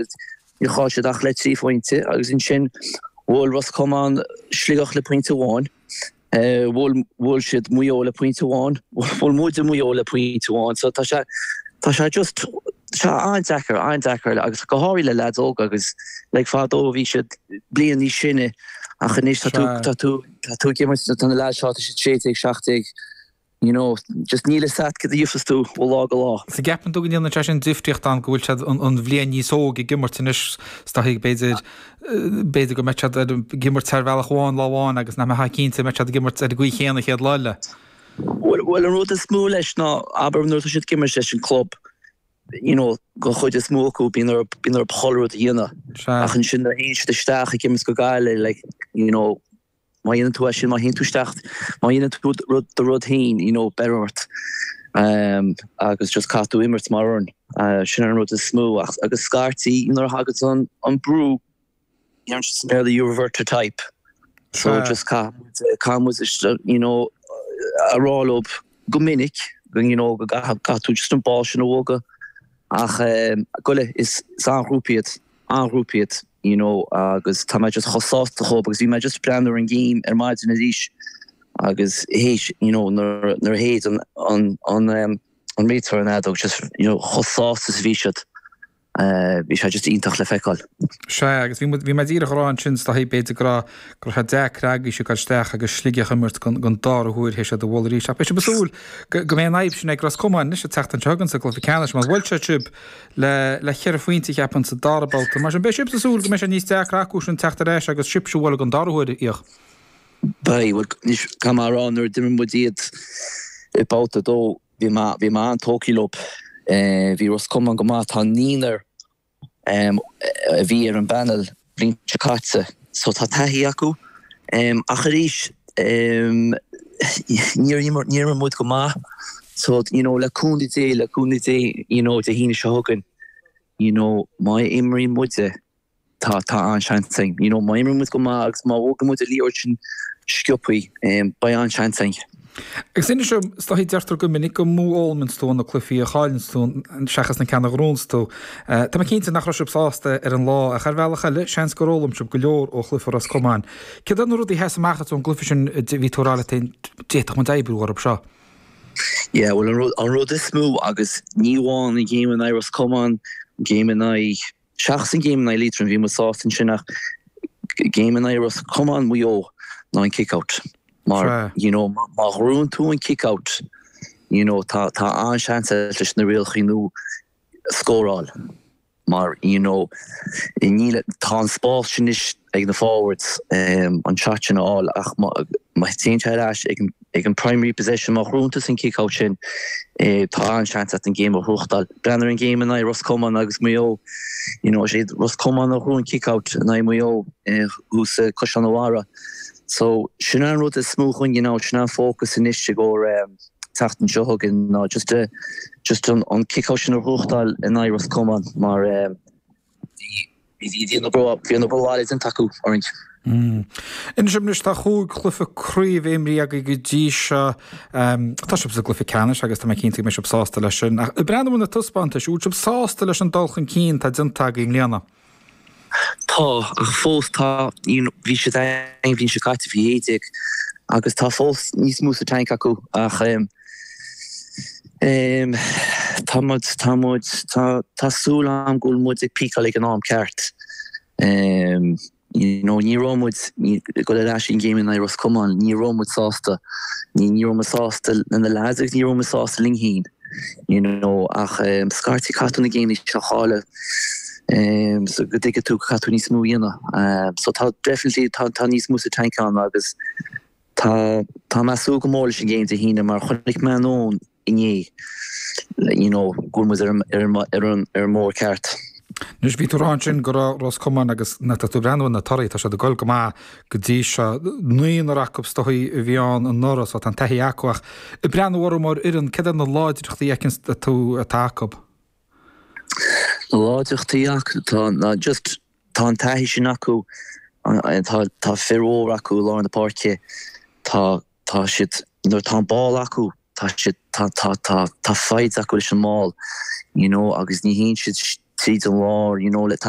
agus níor chaill siad ach le trí phointe agus ansin bhuail Ros Comáin Sligeach le pointe amháin, bhuail, bhuail siad Maigh Eo le pointe amháin, bhuail muide Maigh Eo le pointe amháin, so tá sé, tá sé just, tá sé an-deacair, an-deacair agus go háirithe le leaids óga agus like fadó bhí siad bliain níos sine ach anois tá tú, tá tú, tá tú ag imirt tá na leaids seo tá siad 16, 17, you know, just níl 'fhios a't céard a gheofas tú ó lá go lá. So gceapann tú go ndéanann sé sin difríocht ann go bhfuil siad an bhliain níos óige ag imirt anois is dóichí b'fhéidir, b'fhéidir go mbeidh siad ar an, ag imirt ar bhealach amháin lá amháin agus nach mbeifeá cinnte go mbeidh siad ag imirt ar an gcaoi chéanna an chéad lá eile. Bhuel, bhuel an rud is mó leis ná, abair nuair atá siad ag imirt leis an gclub, you know, gon chuid is mó acu bíonn orthu, bíonn orthu chuile rud a dhéanamh. Sea. Ach ansin nuair a théann siad isteach ag imirt go Gaillimh like, you know, Má dhéanann tú é sin, má théann tú isteach, má dhéanann tú rud, do rud féin, you know, béarfar ort agus just caithfidh tú imirt mar fhoireann. Sin an rud is mó ach, agus scaití nuair a thagann an brú, deireann siad sa mBéarla you revert to type, so just caithfidh muid, caithfidh muid just, you know, a rá leob go minic, you know, go gcaith, caithfidh tú just an ball sin a bhogadh ach go le, is an-ghrúpa iad. an-ghrúpa iad you know agus tá mé just chomh sásta dhóibh agus bhí mé just breathnú ar an ngéim ar maidin arís agus théis you know nuair a shéid an an an ehm an réiteoir an fheadóg just you know chomh sásta is a bhí siad eh bhí sé just iontach le feiceáil. Sea agus bhí muid bhí mé díreach a rá ansin is dóichí b'fhéidir go raibh go raibh sé deacair agaibhse a ghoil isteach agus Sligeach a imirt go gon dara huair is iad a bhualadh arís ach beidh sibh ag súil go go mbeidh an fhadhb sin ag Ros Comáin anois ag teacht anseo chugainn sa gcluiche ceannais mar bhuail siad sibh le le ceithre phointe a cheapfainn sa dara babhta. Mar sin, beidh sibhse ag súil go mbeidh sé níos deacra acusan teacht ar ais agus sibhse a bhualadh gon dara huair íoc. Beidh. Bhuel, anois, caithfidh mé a rá, nuair a d'imir muid iad i babhta a dó, bhí mé, bhí mé an-tógthaí leob. Bhí Ros Comáin go maith. Tá naonúr a bhí ar an bpanel bhliain seo caite so tá taithí acu ach arís níor imir muid go maith so you know le cúnamh Dé, le cúnamh Dé you know Dé hAoine seo chugainn you know má imríonn muid eh tá tá an-seans againn you know má imríonn muid go maith agus má bhogann muid an liathróid sin sciopthaí beidh an-seans againn. Agus inis dom, is dóichí deirtear go minic gur mó a fhoghlaimíonns tú ó na cluifí a chailleanns tú seachas na ceanna a ghnóthaíonns tú. Tá mé cinnte nach raibh sibh sásta ar an lá, ach ar bhealach eile, seans gur fhoghlaim sibh go leor ó chluife Ros Comáin. Céard iad na rudaí a sheas amach duit ón gcluife sin a bhí tú ag rá leat féin, d'fhéadfadh muid oibriú orthu seo? Yeah, bhuel an rud is mó, agus ní amháin an géim in aghaidh Ros Comáin, an géim in aghaidh. Seachas an game in aghaidh Liatroim, bhí muid sásta ansin ach game in aghaidh Ros Comáin, Maigh Eo ná an kick-out. Mar, you know, má ghnóthaíonn tú an kick-out, you know, tá tá an-seans agat leis na rialacha nua scóráil mar, you know, níl, tá an spás sin anois. ag na forwards an shot sin a fháil ach má théann sé ar ais ag an primary possession, má ghnóthaíonn tusa an kickout sin, tá an-seans agat an game a ghnóthachtáil. Breathnaigh ar an game in aghaidh Ros Comáin agus Maigh Eo, you know is iad Ros Comáin a ghnóthaigh an kickout in aghaidh Maigh Eo thuas i gCaisleán an Bharraigh. So sin an rud is mó chugainn now, sin an fócas anois i gcomhair an tseachtain seo chugainn ná just an kickout sin a ghnóthachtáil in aghaidh Ros Comáin mar, Bhí bhí bhí an obair bhaile déanta acu orainn. Inis dom anois, tá chúig chluife craoibhe imrithe agaibh go dtí seo. Tá sibh sa gcluife ceannais agus tá mé cinnte go mbeidh sibh sásta leis sin. Breandán, bhfuil na taispeántais, bhfuil sibh sásta leis an dul chun cinn atá déanta agaibh i mbliana? Tá, ach fós tá, you know, bhí siad ag, bhí siad caite faoi 11 agus tá fós níos mó sa tank acu ach eh, Ehm. Tá muid, tá muid, tá, tá súil agam go bhfuil muid ag peakáil ag an am ceart. Ehm. You know, ní raibh muid, go le leis an game in aghaidh Ros Comáin, ní raibh muid sásta, ní, ní raibh muid sásta le na leaids agus ní raibh muid sásta linn fhéin. You know, ach ehm, scaití caithfidh tú na gameanna seo a chailleadh ehm, so go dtuigfidh tú caithfidh tú níos mó a dhéanamh. Ehm, so tá definitely, tá, tá níos mó sa tank againn agus Tá mé ag súil go mór leis an game Dé hAoine mar chonaic mé tráthnóna inné you know go bhfuil muid ar an mbóthar ceart. Anois, bhí tú ag rá ansin go raibh Ros Comáin agus na, tá tú ag breathnú ar na torthaí, tá siad ag dul go maith go dtí seo. Naonúr acu is dóigh a bhí ann anuraidh so tá an taithí acu ach ag breathnú orthu mar fhoireann, céard iad na láidreachtaí a fheiceann tú atá acu? Na láidreachtaí acu atá ná just Tá an taithí sin acu, tá fir mhóra acu i lár na páirce, tá siad, nuair atá an ball acu, tá siad, tá, tá, tá, tá foighid acu leis an mball, you know, agus ní théann siad tríd an lár, you know, le, tá,